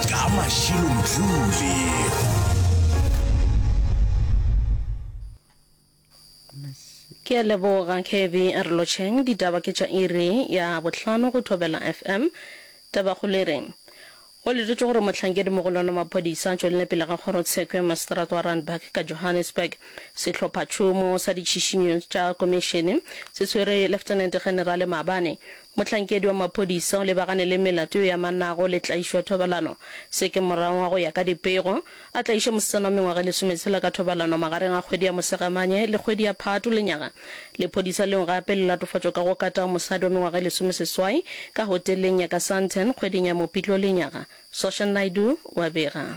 Ka Mashilo Mdluli. Ke a leboga Kevy Arlocheng. Ditaba ke tša iri ya bohlano go Thobela FM. Tabakgolo e re, Go letetšwe gore mohlankedi-mogolwane wa maphodisa a tšwelele pele ga kgorotsheko ya maseterata wa Randburg ka Johannesburg. Sehlophatšhomo sa ditšhišinyo tša komišene se tshwere Leftenente Generale maabane Mohlankedi wa maphodisa o lebagane le melato e amanago le tlaišo ya thobalano. Se ke morang wa go ya ka dipego. A tlaiše mosetsana wa mengwaga e lesometshela ka thobalano magareng ga kgwedi ya Mosegamanye le kgwedi ya Phatho lenyaga. Lephodisa leo gape le latofatšwa ka go kata mosadi wa mengwaga e lesomeseswai ka hoteleng ya ka Sandton kgweding ya Mopitlo lenyaga, Sosha Naidoo wa bega.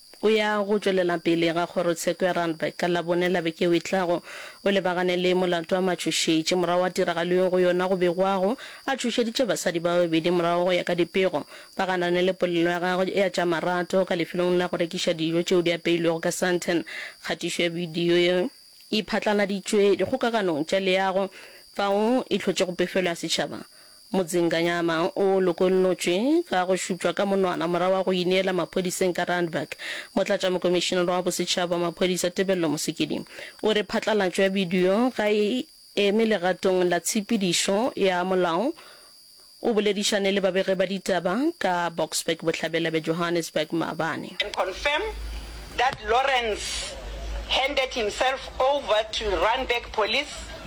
O ya go tšwelela pele ga kgorotsheko ya Randburg ka Labone la beke e tlago. O lebagane le molato a matšhošetši. Morago ga tiragalo yeo go yona go begwago, a tšhošeditše basadi ba babedi morago go ya ka dipego. Ba ganane le polelo ya gagwe ya tša marato ka lefelong la go rekiša dijo tšeo di apeilwego ka Sandton. Kgatišo ya bidio e e phatlaladitšwe dikgokaganong tša leago fao e hlotšego pefelo ya setšhaba. Motseng Kanyama o lokollotšwe ka go šutšwa ka monwana morago ga go ineela maphodiseng ka Randburg. Motlatšamokomišenara wa Bosetšhaba wa Maphodisa Tebello Mosekedi o re phatlalatšo ya bidio ga e eme legatong la tshepedišo ya molao. O boledišane le babegi ba ditaba ka Boksburg Bohlabela bja Johannesburg maabane. and confirm that Lawrence handed himself over to Randburg Police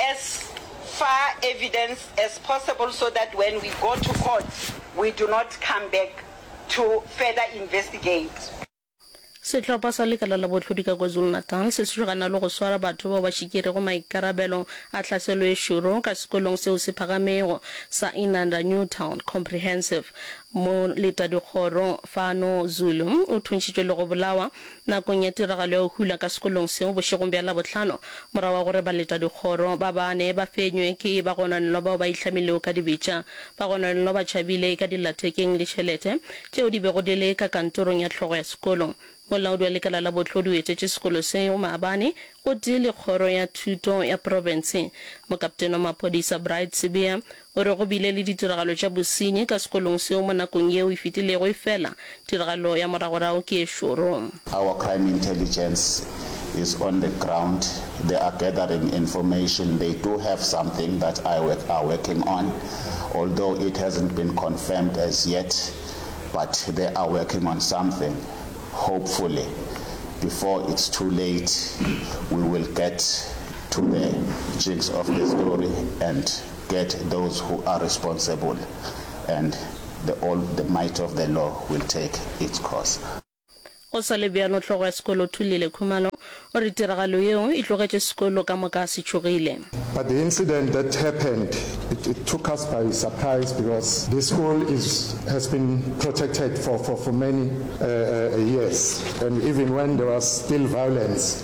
as far evidence as possible so that when we go to court we do not come back to further investigate. Sehlopha sa lekala la bohlodi ka KwaZulu-Natal se swaragana le go swara batho bao ba šikerego maikarabelo a hlaselo e šoro ka sekolong seo se phagamego sa Inanda Newtown Comprehensive. Moletadikgoro Fano Zulu o thuntšhitšwe le go bolawa Nakong ya tiragalo ya go hula ka sekolong seo bošegong bja Labohlano, morago ga gore baletadikgoro ba bane ba fenywe ke bagononelwa bao ba ihlamilego ka dibetša, bagononelwa ba tšhabile ka dillathekeng le tšhelete tšeo di bego di le ka kantorong ya hlogo ya sekolo. Molaodi wa lekala la bohlodi o etetše sekolo seo maabane gotee le kgoro ya thuto ya profense. Mokaptene wa maphodisa Bright Sibiya O re go bile le ditiragalo tša bosenyi ka sekolong seo mo nakong yeo e fetilego efela tiragalo ya moragorao ke e šoro. Our crime intelligence is on the ground, they are gathering information, they do have something that I work are working on although it hasn't been confirmed as yet but they are working on something, hopefully before it's too late we will get to the jinx of the story and Get those who are responsible and the all the might of the law will take its course. Go sa le bjalo, hlogo ya sekolo Thulile Khumalo o re tiragalo yeo e tlogetše sekolo ka moka se tšhogile. But the incident that happened it it took us by surprise because this school is has been protected for for for many uh uh years and even when there was still violence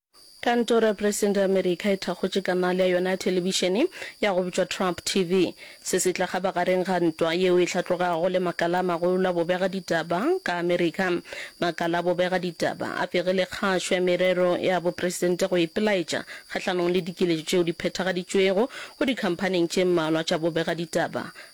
Kantoro ya Presidente ya Amerika e thakgotše kanale ya yona ya thelebišene ya go bitšwa Trump TV. Se se tla kgabagareng ga ntwa yeo e hlatlogago le makala a magolo a bobega ditaba ka Amerika. Makala a bobega ditaba a begile kgašo ya merero ya bopresidente go ipelaetša kgahlanong le dikiletšo tšeo di phethagaditšwego go dikhamphaning tše mmalwa tša bobega ditaba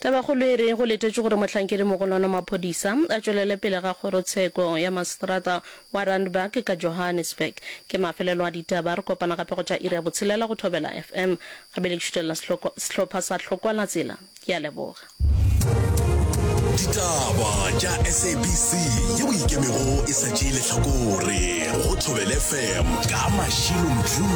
Tabakgolo e re go letetšwe gore mohlankedi-mogolwane wa maphodisa a tšwelele pele ga kgorotsheko ya maseterata wa Randburg ka Johannesburg. Ke mafelelo a ditaba. Re kopana gape go tša iri ya botshelela go Thobela FM. Gape le šutelela sehlopha sa Tlhokwalatsela. Ke a leboga. Ditaba tša SABC ye o ikemego e sa tšee lehlakore go Thobela FM ka Mashilo Mjoo.